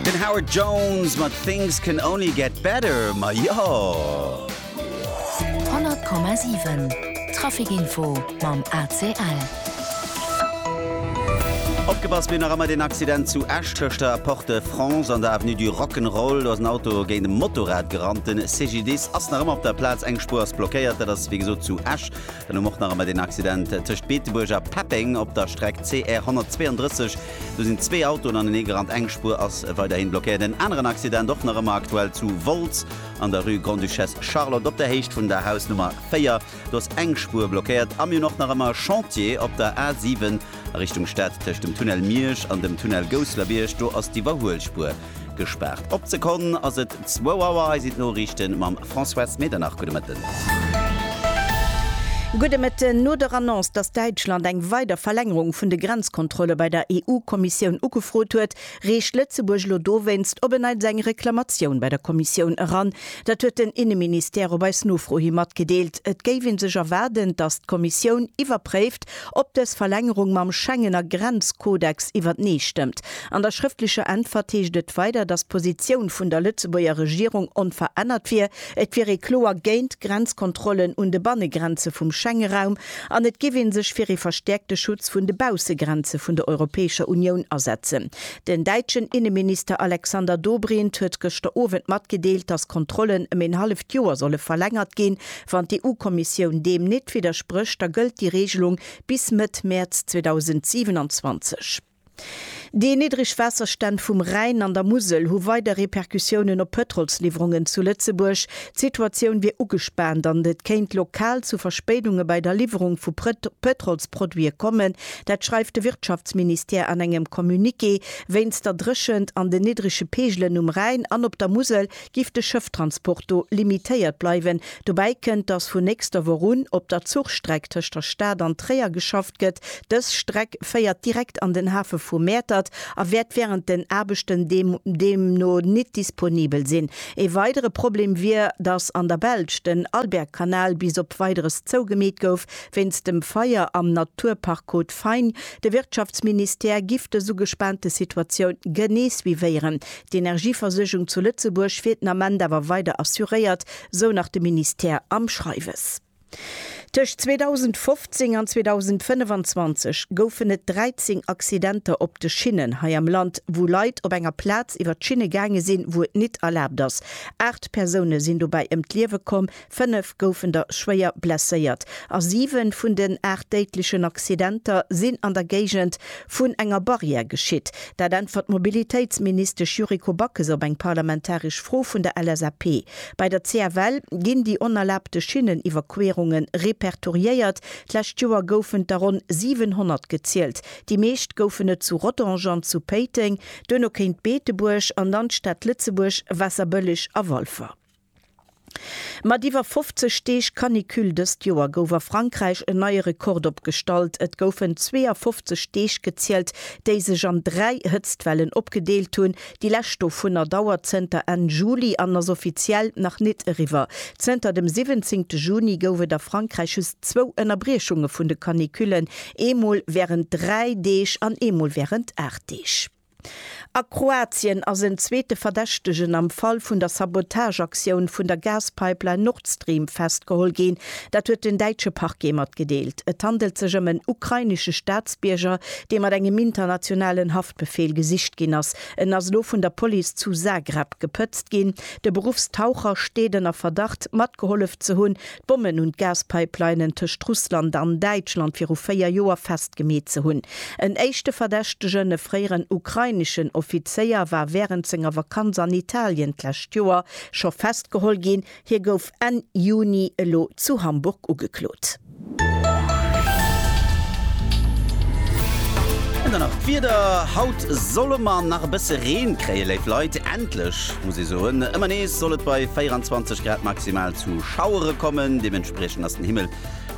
Den Howard Jones mat Things can only get better, ma jo! 100,7 Traficinfo mam ACL. Opgepasst, mir hunn nach ëmmer deen Accident zu Esch tëscht der Porte de France an der Avenue du Rock 'n' Roll. Do ass en Auto géint e Motorrad gerannt. De CGDIS ass nach ëmmer op der Plaz, eng Spuer ass blockéiert. Dat ass wéi gesot zu Esch. Den um och nach ëmmer deen Accident tëscht Beetebuerg a Peppeng op der Streck CR 132. Do sinn zwee Autoen anenee gerannt, eng Spuer ass weiderhi blockéiert. En aneren Accident och nach ëmmer aktuell zu Wolz an der Rue Grande-Duchesse Charlotte op der Héicht vun der Hausnummer 4. Do ass eng Spuer blockéiert a mir hunn och nach ëmmer e Chantier op der A 7 a Richtung Stad tëscht dem Tunnel Miersch an dem Tunnel Gousselerbierg. Do ass d'Iwwerhuelspuer Gespaart op d'Sekonn ass et zwou Auer. Hei sinn d'Noriichten mam Françoise Medernach. Gudde Mëtten. Gudde Mëtten. No der Annonce, datt Däitschland eng weider Verlängerung vun de Grenzkontrolle bei der EU-Kommissioun ugefrot huet, reecht Lëtzebuerg lo dowéinst op e neits eng Reklamatioun bei der Kommissioun eran. Dat huet den Inneministère op eis Nofro hi matgedeelt. Et géif ee sech erwaarden, datt d'Kommissioun iwwerpréift, ob dës Verlängerung mam Schengener Grenzkodex iwwertenee stëmmt. An der schrëftlecher Äntwert heescht et weider, datt d'Positioun vun der Lëtzebuerger Regierung onverännert wier, et wier ee kloer géint d'Grenzkontrollen un de Bannegrenze vum Schengeraum an et géif ee sech fir ee verstäerkte Schutz vun de Baussegrenze vun der Europäescher Unioun asetzen. Den däitschen Inneminister Alexander Dobrindt huet gëschter Owend matgedeelt, datt Kontrollen ëm een halleft Joer solle verlängert ginn, Wann d'EU-Kommissioun deem nit widdersprécht, da gëllt déi Reegelung bis Mëtt Mäerz 2027. Déi niddreg Waasserstänn vum Rhäin an der Musel hu weider Repercussiounen op d'Pëtrolsliwwerungen zu Lëtzebuerg. D'Situatioun wier ugespaant an et kéint lokal zu Verspéidunge bei der Liwwerung vu Pëtrolsproduite kommen. Dat schreift de Wirtschaftsministère an engem Communiqué. Wéinst der Dréchent an den niddrege Peegelen um Rhäin an op der Musel giff de Schëfftransport do limitéiert bleiwen. Dobäi kënnt, dass vun nächster Woch un op der Zuchstreck tëscht der Stad an Tréier geschafft gëtt. Dës Streck féiert direkt an den Hafe vu Mäertert a wäert wärend den Aarbechten deemno nit disponibel sinn. Ee weidere Problem wier, dass an der Belsch den Albergkanal bis op Weideres zougemeet gouf wéinst dem Feier am Naturpark Côte Fine. De Wirtschaftsministère giff dës ugespaante Situatioun genee suivéieren, D'Energieversuergung zu Lëtzebuerg wier den Ament awer weider assuréiert, sou nach de Ministère am Schreiwes. Tëscht 2015 an 2025 goufen et 13 Accidenter op de Schinnen hei am Land, wou Leit op enger Plaz iwwer d'Schinne gaange sinn, wou et nit erlaabt ass. Aacht Persoune sinn dobäi ëm d'Liewe komm, Fënnef goufen der schwéier blesséiert a siwe vun den aacht déidlechen Accidenter sinn an der Géigend vun enger Barrière geschitt. Dat äntwert d'Mobilitéitsministesch Yuriko Backes op eng parlamentaresch Fro vun der LSAP. Bei der CFL ginn déi onerlaabte Schinneniwwerquerunge repertoriéiert. D'lescht Joer goufen der ronn 700 gezielt. Déi meescht goufen et zu Rodange an zu Péiteng, duerno kéint Beetebuerg an dann d'Stad Lëtzebuerg, Waasserbëlleg a Walfer. Mat iwwer 50 Deeg Canicule dëst Joer gouf a Frankräich en neie Rekord opgestallt. Et goufen 52 Deeg gezielt, déi sech an dräi Hëtztwellen opgedeelt hunn. Déi lescht dovunner dauert zënter Enn Juli an ass offiziell nach nit eriwwer. Zënter dem 17 Juni gouf et a Frankräich just zwou Ënnerbriechunge vun de Canicullen, eemol wärend dräi Deeg an eemol wärend aacht Deeg. A Kroatien ass en zweete Verdächtegen am Fall vun der Sabotageaktioun vun der Gaspipeline Nord Stream festgeholl ginn. Dat huet den däitsche Parquet matgedeelt. Et handelt sech ëm en ukrainesche Staatsbierger, dee mat engem internationalen Haftbefeel gesicht ginn ass. En ass elo vun der Police zu Zagreb gepëtzt ginn. De Beruffstaucher steet ënner Verdacht, matgehollef ze hunn, D'Bommen un d'Gaspipelinen tëscht Russland an Däitschland viru véier Joer festgemeet ze hunn. En éischte Verdächtegen, e fréieren ukraineschen Offizéier, war wärend senger Vakanz an Italien d'lescht Joer scho festgeholl ginn. Hie gouf Enn Juni elo zu Hamburg ugeklot. An dann nach d'Wieder, Haut solle mer nach e bësse Reen kréien, léif Leit. Endlech, muss ee soen. Ëmmer nees soll et bei 24 Grad maximal zu. Schauere kommen, deementspriechend ass den Himmel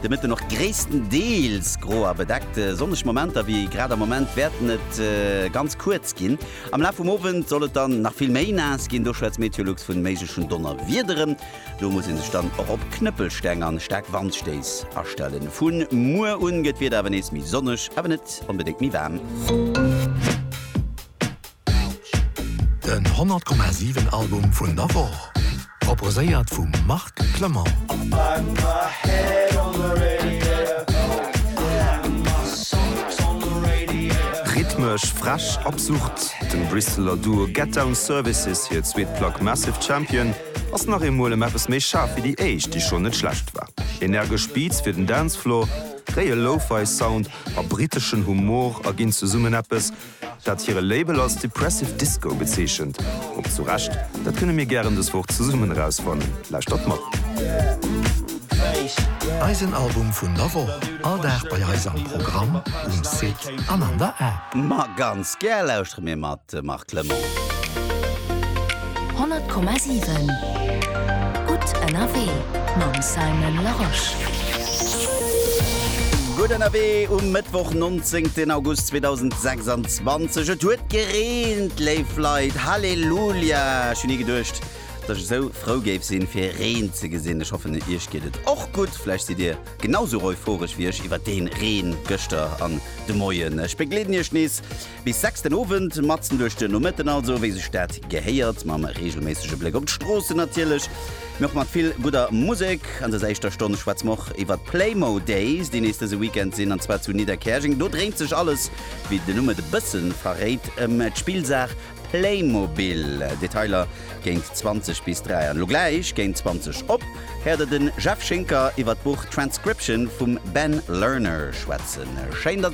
de Mëtten och gréisstendeels gro a bedeckt. Sonneg Momenter wéi grad am Moment wäerten et ganz kuerz ginn. Am Laf vum Owend soll et dann nach vill méi naass ginn, do schwätzt Meteolux vun méiglechen Donnerwiederen. Do muss ee sech dann och op Knëppelsteng an staark Wandstéiss astellen. Vu muer un gëtt d'Wieder awer nees méi sonneg, awer net onbedéngt méi waarm. Den 100,7 Album vun der Woch, proposéiert vum Marc Clement. Rhythmesch, frech, absurd, dem Brisseler Duo Get Down Services hir zweet Plack Massive Champion ass nach eemol ëm eppes méi schaarf wéi déi éischt, déi schonn net schlecht war. Energesch Beats fir den Dancefloor, réie Lo-Fi Sound a briteschen Humor erginn zesummen eppes, dat hire Label als Depressive Disco bezeechent, och zu Recht, dat kënne mir gären dës Woch zesummen erausfannen. Lauschtert mat. Eisen Album vun der Woch, all Dag bei eis am Programm, um Site an an der App. Ma ganz gär lauschtere mir mat, de Marc Clement. 100,7 Gutt ënnerwee mam Simon Larosche. Gutt ënnerwee um Mëttwoch 19 August 2026. Et huet gereent, léif Leit. Halleluja! Ech hunn ni geduecht, datt ech esou frou géif sinn, fir Reen ze gesinn. Ech hoffen, iech geet et och gutt. Vläicht sidd dir genau sou euphorisch wéi ech iwwer dee Reen gëschter an de Moien. Ech begleeden iech nees Bis 6 den Owend, matzen duerch den Nomëtten also, wéi sech dat gehéiert, mam reegelméissege Bléck op d'Stroossen natierlech, mee och mat vill gudder Musek. An dëser éischter Stonn schwätze mer och iwwer d'Playmo Days, déi nees dëse Weekend sinn, an zwar zu Nidderkäerjeng. Do dréint sech alles, wéi den Numm et e bësse verréit, ëm d'Spillsaach Playmobil. Detailer géint 20 bis 3. An elo gläich géint 20 op héiert der den Jeff Schinker iwwer d'Buch Transcription vum Ben Lerner schwätzen. Schéin, dass.